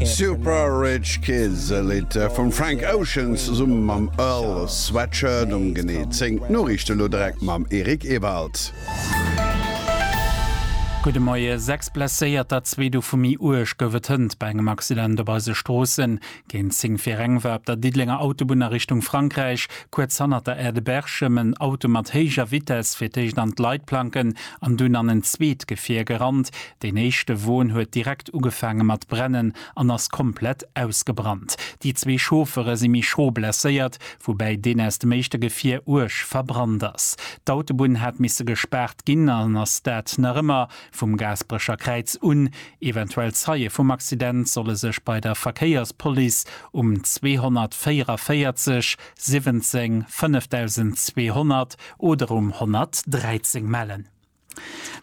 Super Rich Kids, e Lidd vum Frank Ocean zesumme mam Earl Sweatshirt, um genee 10. D'Noriichte lo direkt mam Eric Ewald. Gudde Moie. Sechs Blesséierter, zwee dovu méi uerg, gouf et hënt bei engem Accident op eise Stroossen. Géint 10 fir eng war op der Diddelenger Autobunn a Richtung Frankräich, kuerz hannert der Aire de Berchem, en Auto mat héijer Vitess fir d'éischt an d'Leitplanken an dunn an en zweet Gefier gerannt. Deen éischte Won huet direkt ugefaange mat brennen an ass komplett ausgebrannt. Déi zwee Chauffere si méi schro blesséiert, woubäi deen aus dem éischte Gefier uerg verbrannt ass. D'Autobunn hat misse gespaart ginn an ass dat nach ëmmer. Vum Gaasperecher Kräiz un. Eventuell Zeie vum Accident solle sech bei der Verkéierspolice um 244 17 5200 oder um 113 mellen.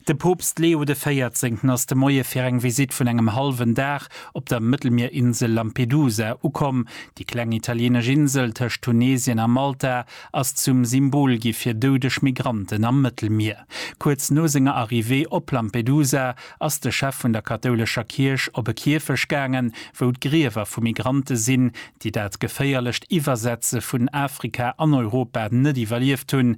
De Poopst Leo de Véierzéngten ass de Moie fir eng Visitt vun engem hallwen Dag op der Mëttelmierinsel Lampedusa ukomm. Déi kleng italienesch Insel tëscht Tunesien a Malta ass zum Symbol gi fir doudeg Migranten am Mëttelmier. Kuerz no senger Arrivée op Lampedusa ass de Chef vun der kathoulescher Kierch op e Kierfech gaangen, wou d'Griewer vu Migrante sinn, déi dat geféierlecht Iwwersetze vun Afrika an Europa net iwwerlieft hunn,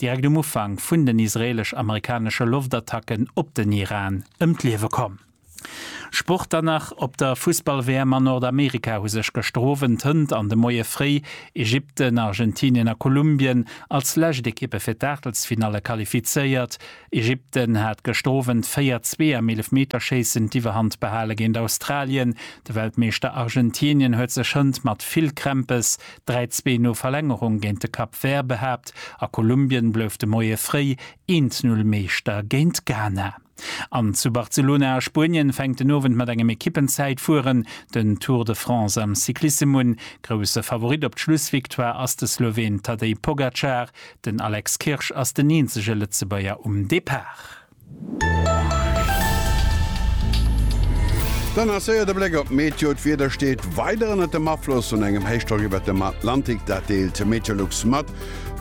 direkt um Ufank vun den israeelesch-amerikanesche Loftattacken op den Iran ëm d'Liewe komm. Sport dann nach, Op der Fussball-WM a Nordamerika hu sech gëschter Owend Hënt an de Moie fréi Ägypten, Argentinien a Kolumbien als lescht Ekippe fir d'Aachtelsfinalle qualifizéiert. Ägypten hat gëschter Owend 4, 2 am Eelefmeterschéissen d'Iwwerhand behale géint Australien. De Weltmeeschter Argentinien huet sech Hënt mat vill Krämpes 3, zwee no Verlängerung géint de Cap Vert behaapt a Kolumbien blouf de Moie fréi 1, 0 Meeschter géint Ghana. An zu Barcelona a Spuenien fänkt den Owend mat engem Ekippenzäitfueren den Tour de France am Cyclissem un. Grousse Favorit op d'Schlussvictoire ass de Sloween Tadej Pogacar, den Alex Kirsch ass den eenzege Lëtzebuerger um Depart. Dann nach séier de Bléck op d'Meteo. D'Wieder steet weider ënnert dem Afloss vun engem Héichdrock iwwert dem Atlantik, dat deelt Meteolux mat.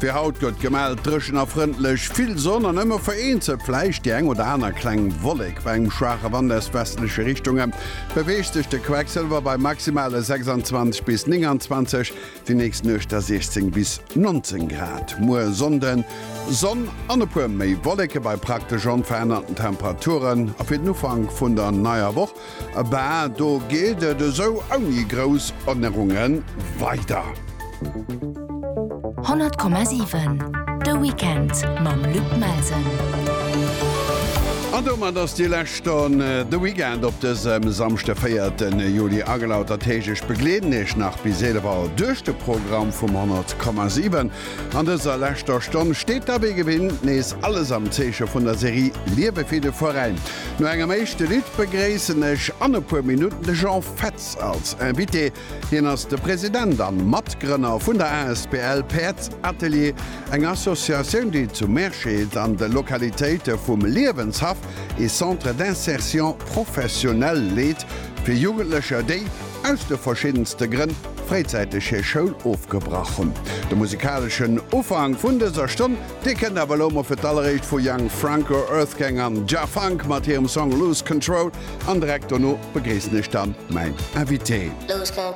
Fir haut gëtt gemellt, dréchen a frëndlech, vill Sonn an ëmmer vereenzelt vläicht déi eng oder aner kleng Wollek. Bei engem schwaache Wand aus westleche Richtunge beweegt sech de Quecksilwer bei maximale 26 bis 29, Déi nächst Nuecht da 16 bis 19 Grad. Muer Sonnden Sonn an e puer méi Wolleke bei praktesch onverännerten Temperaturen. A fir den Ufank vun der neier Woch, bah, do geet et esou ouni grouss Ännerunge weider. 100,7 De Weekend mam Luc Melsen. An domat ass déi lescht. Dann de Weekend, Op dësem Samschde, 4 Juli, agelautert Heescht. Ech begleeden Iech nach bis 11 Auer duerch de Programm vum 100,7. An dëser leschter Stonn steet da wéi gewinnt nees alles am Zeeche vun der Serie Liewe fir de Veräin. No engem éischte Lidd begréissen ech an e puer Minutten de Jean Fetz als Invité. Hien ass de President an Matgrënner vun der asbl Päerdsatelier, eng Associatioun déi zu Meersched an de Lokalitéite vum Liewenshaff ee Centre d'insertion professionnelle leet fir Jugendlecher déi, aus de verschiddenste Grënn, fréizäiteg hir Schoul ofgebrach hunn. De musikaleschen Ufank vun dëser Stonn Dir kënnt awer elo mol fir d'alleréischt vu Young Franco, Earthgang an Jah Funk mat hirem Song Lose Control an direkt dono begréissen ech dann mäin Invité.